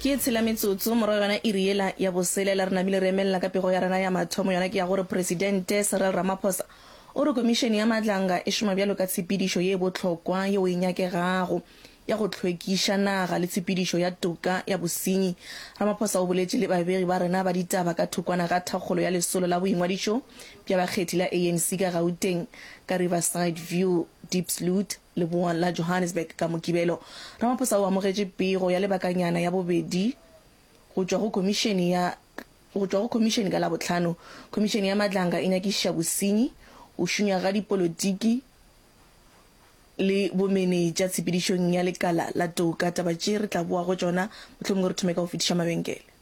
Ke e tshela metsotso morago yona iri yela ya boselela, re namile re emelela ka pego ya rena ya mathomo, yona ke ya gore Presidente Cyril Ramaphosa o re Komišene ya Matlanga e šoma bjalo ka tshepedišo ye bohlokwa yeo e nyakegago ya go hlwekiša naga le tshepedišo ya toka ya bosenyi. Ramaphosa o boletše le babegi ba rena ba ditaba ka thokwana ga thakgolo ya lesolo la boingwadišo bja bakgethi la ANC ka Gauteng ka Riverside View, Diepsloot. Leboa la Johannesburg ka Mokibelo, Ramaphosa o amogetše pego ya lebakanyana ya bobedi go tšwa go Khomišene ya go tšwa go Khomišene ka Labohlano. Khomišene ya Madlanga e nyakišiša bosenyi, go šunyega ga dipolotiki le bomenetša tshepedišong ya lekala la toka. Taba tše re tla boa go tšona, mohlomongwe re thome ka go fetiša mabenkele.